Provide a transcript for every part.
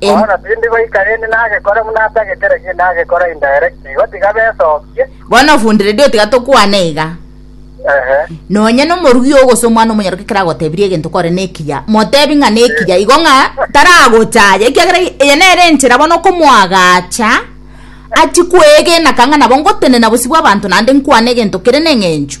Em- Bono tindi goikarenie nagekora buna atage kera gento nagekora indirect igo tiga besokie. bono ofundire dio tiga tokwane iga Ehe. nonye nomorugi ogose omwana omonyaroke kera agotebirie egento kore nekiya motebi ng'a nekiya igo ng'a taragochaya ekiagera eye nere enchera bono okomoagacha achi kwegenaka ng'a nabo ngotenena bosio bwa abanto naende nkwane egento kere neng'encho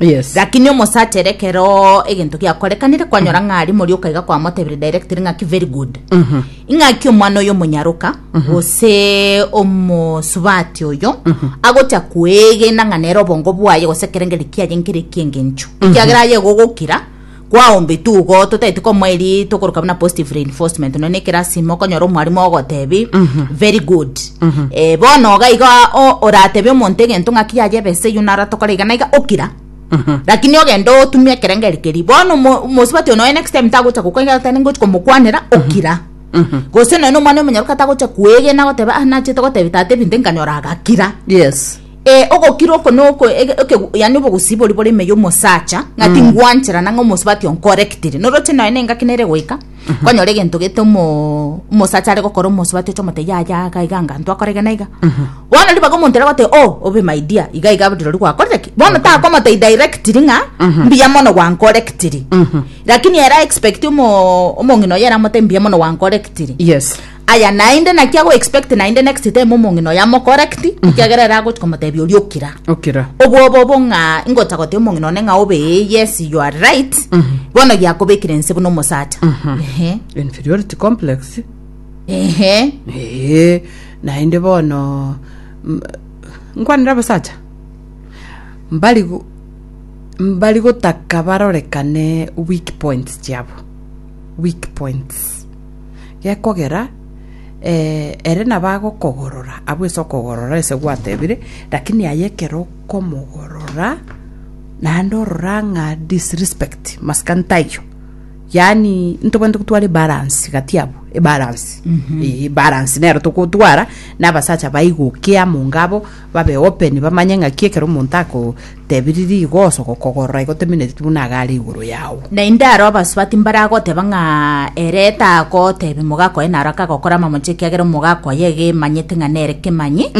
yes lakini omosachere ekero egento giakorekanire kwanyora ng'a ari mori okaiga kwamotebire directly ng'aki very good ing'aki omwana oyo omonyaroka gose omosubati oyo agocha kwegena ng'a nere obongo bwaye gose ekerengeri kiaye nkere ekiengencho ekiagera aye egogokira Kwaombe tugo totaeti komoeri tokoruka buna positive reinforcement nonya ekerasi ime okonyora omwarimu ogotebi very good Eh, bono iga iga o- oratebi omonto egento ng'aki yaye ebesa eyio naro atokora iga na iga okira lakini ogende otumie ekerengeri keria bono omo- omosubati onoe next time tagocha gokoira oteba ningochi komokwanera okira gose nonya omwana omonyaroka tagocha kwegena goteba ah nachete gotebi tata ebinto nkanyora agakira yes Ee, ogokira oko noko yani obogusi bori bore ime y'omosacha ng'a mm. tingwanchera nang'a omosubati onkorektire noroche noe nengaki nere goika mhm. konyora egento gete omosacha are gokora omosubati oche omote yaya iga iga anga ntwakorege na iga mhm. bono ribaga omonto ere gote o oh, obe my dear iga iga rori gwakorire ki bono takomotei directiri ng'a mhm. mbuya mono gwankorektiri lakini era expect omong'ina oyo eramote mbuya mono gwankorektiri yes Aya naende naki ago expect naende next time omong'ina oyo amocorrect ekiagera ere agochi komotebia oria okira okira obwoba obo ng'a ingocha gotia omong'ina one ng'a obe eh, yes you are right bono giakobekire nse buna omosacha Ehe. inferiority complex Ehe. ee naende bono m- nkwanera abasacha mbari go- mbari gotaka barorekane weak points chiabo weak points gekogera ere nabagokogorora abwo ase okogorora ase gwatebire lakini aye ekero okomogorora naende orora ng'a disrespect masikani taiyo yaani ntobwenerete gotwara ebalansi gati abwo ebalansi eeh ebalansi nero togotwara na abasacha baigokia amo ngabo. Babe open bamanye ng'aki ekero omonto akotebirie igo ase ogokogorora igo temineti buna iga are igoro yao. Naende aro abasubati mbaragoteba ng'a ere tagotebia omogaka oye naro akagokora amamocho ekiagera omogaka oye iga emanyete ng'a nere kemanyi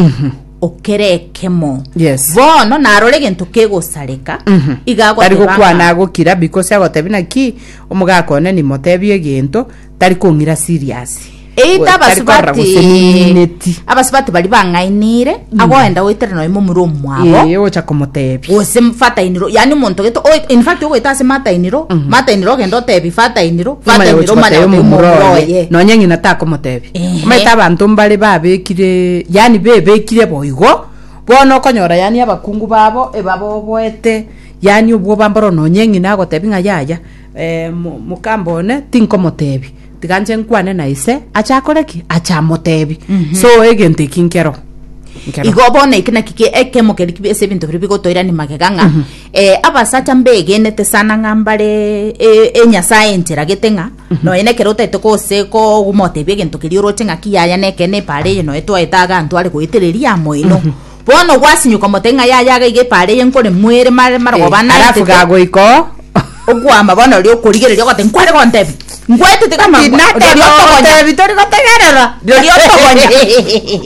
okere ekemo. Yes. Bono narora egento kegosareka iga Tari agoteba gokwana ng'a agokira because agotebia naki omogaka one nimotebie egento tari kong'ira serious. Eyi Go- tari korora tabasubati gose nimineti. abasubati bari bang'ainire agoenda goetera nonya momura omwabo Eh, ogocha komotebia. gose fatainiro yani omonto gete oe- in fact ogoeta ase matainiro matainiro ogenda otebi fatainiro Omanya fatainiro gocha omanya gotebia gotebia omomura omomura oye. oye Nonya ng'ina takomotebia. Ehe. Omanyete abanto mbare babekire, yani bebekire boigo, bono okonyora yani abakungu babo ebaboboete, yani obwoba mboro nonya ng'ina agotebia ng'a yaya, Mokambe one tinkomotebi, tiga nche nkwane na ise, ache akore ki? Ache amotebi. So egento eki nkero. Nkero. igo bono eke naki ki- ekemo keri kibe ase ebinto biria bigotoirania magega ng'a eh, abasacha mbegenete sana ng'a mbare e- enyasae encheragete ng'a nonya na ekero otaete gose komotebia egento keria oroche ng'aki yaya nekeene epaara eye noe twaete iga ntware goetereria amo ino Bono gwasinyoka omote ng'a yaye aga iga epaara eye nkore moere mare marogoba Eh, halafu anaetete gagoika oo. okwama bono ri okorigereria ogoteba nkware gontebia ngwaetete kama Ati, ngwa- nateba rirorio otogonya otebi, tori gotegerera. rirorio otogonya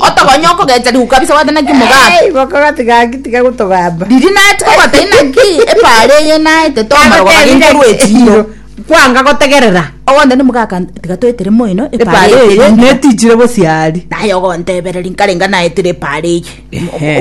otogonya okogecha riku kabisa gwate naki omogato Ei, boko gati gaki tiga gotogamba. riria naetete ogoteba inaki epaara eye naetete omorogo gaki Agotebire nkorwa echiro echiro. Kwanga gotegerera. Ogonte nimogaka tiga toetere moino epaara eye, netichire bosio aria. Naye ogontebereri nkarenga naetire epaara eye.